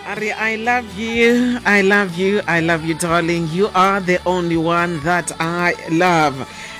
Ari, I love you. I love you. I love you, darling. You are the only one that I love.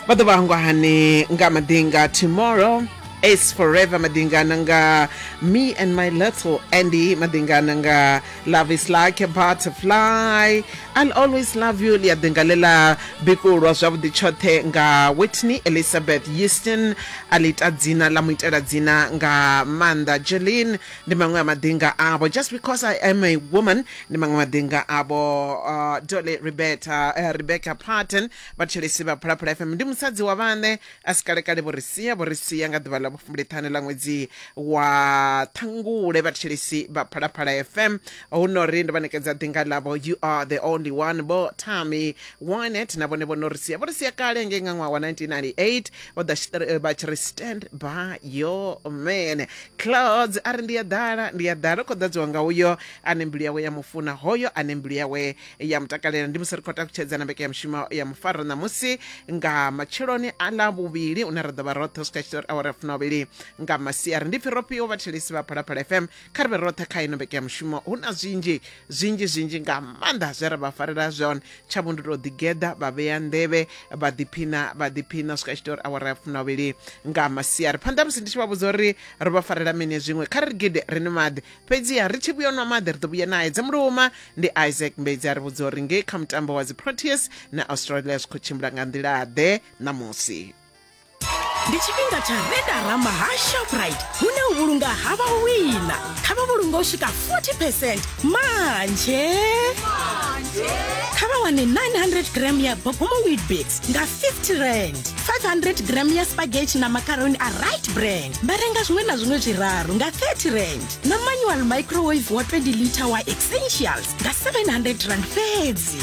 Vhathu vhangwa hani nga madinga tomorrow is forever madingana nga me and my little Andy madingana nga love is like a butterfly I'll always love you lia dingalela bikulwa zwavhuḓi tshoṱhe nga Whitney Elizabeth Houston alita dzina la muitela dzina nga Manda Jeline ndi maṅwe a maḓinga avho just because i am a woman ndi maṅwe maḓinga avho uh, dole rebeta uh, rebecca parton vhatshelesi vha phalaphala fm ndi musadzi wa vhane a si kalekale vho ri sia vho ri sia nga ḓuvha ḽa vhufumbiliṱhanu ḽa ṅwedzi wa ṱhangule vhatshelesi vha phalaphala fm hu no ri ndo vha ṋekedza ḓinga ḽavho you are the only one vho tami winet na vhone vho no ri sia vho ri sia kale ngei nga ṅwaha wa 1998 vha ḓa tshi ṱri- vha tshi ri stand by your man clouds a ri ndi a ḓala ndi a ḓala u khou ḓadziwa nga uyo ane mbilu yawe ya mufuna hoyo ane mbilu yawe ya mutakalela ndi musi ri khou takutshedza na mbeke ya mushumo ya mufaro ṋamusi nga matsheloni a ḽa vhuvhili une ra ḓo vha roṱhe u swika tshitari awara ya funovhili nga masiari ndi pfi ro fhiwa vhathelesi vha phalaphala fm kha ri vhe roṱhe kha ino vheke ya mushumo hu na zwinzhi zwinzhi zwinzhi nga maanḓa zwe ra vha farela zwone tsha vho ndi tou ḓigeḓa vha vhea nḓevhe vha ḓiphina vha ḓiphina swika tshi tea uri awara ya fumilavhili nga masiari phanḓa musi ndi tshi vha vhudza uri ro vha farela mini zwiṅwe kha ri ri gide ri ni maḓi fhedziha ri tshi vhuya nwa maḓi ri ḓo vhuya naye dze muluma ndi isaac mbedzi a ri vhudza uri ngei kha mutambo wa dzi proteas na australia zwi khou tshimbila nga nḓila ḓe ṋamusi ndi tshifhinga tsha redarama ha shoprite hune u vhulunga ha vhawina kha vha vhulunga u swika 40 percent manje kha vha wane 900 gram ya bogomo weetbix nga 50 rand 500 gram ya spaghetti na macaroni a right brand vha renga zwiṅwe na zwiṅwe zwiraru nga 30 rand na manual microwave wa 20 liter wa essentials nga 700 rand fhedzi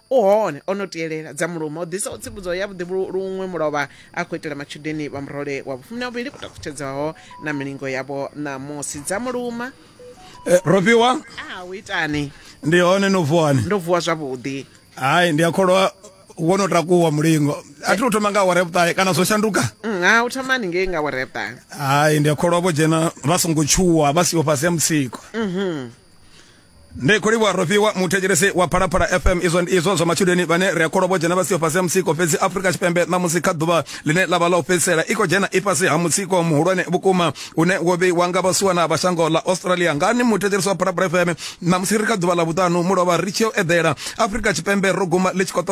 u hone o no tielela dza muluma o ḓisaho tsivhudzo ya vhuḓi luṅwe mulovha a khou itela matshudeni vha murole wa vhufumi na vhuvhili ku takutshedzaho na milingo yavho ṋamusi dza muluma Eh, rofhiwa a u itani ndi hone no vuwani ndo vuwa zwavhuḓi hayi ndi a kholwa wo no takuwa mulingo a thi u thoma nga awara ya vhuṱahe kana zwo shanduka Mm, ha u thomani ngei nga awara ya vhuṱahe hayi ndi a kholwa vho dzhena vha songo tshuwa vha siho fhasi ya mutsiko ndi khou livhuwa rofhiwa muthetshelesi wa phalaphala fm izwo ndi izwo zwa matshudeni vhane ri a kholwa vho dzhena vha siho fhasi ha mutsiko fhedzi afurika tshipembe ṋamusi kha ḓuvha ḽine ḽa vha ḽa u fhedzisela i khou dzhena i fhasi ha mutsiko muhulwane vhukuma une wo vheiwa nga vhasuwana vha shango ḽa australia ngani muthetshelesi wa phalaphala fm ṋamusi ri kha ḓuvha ḽa vhuṱanu mulovha ri tshi yo eḓela afurika tshipembe ro guma ḽi tshi khou ṱoḓa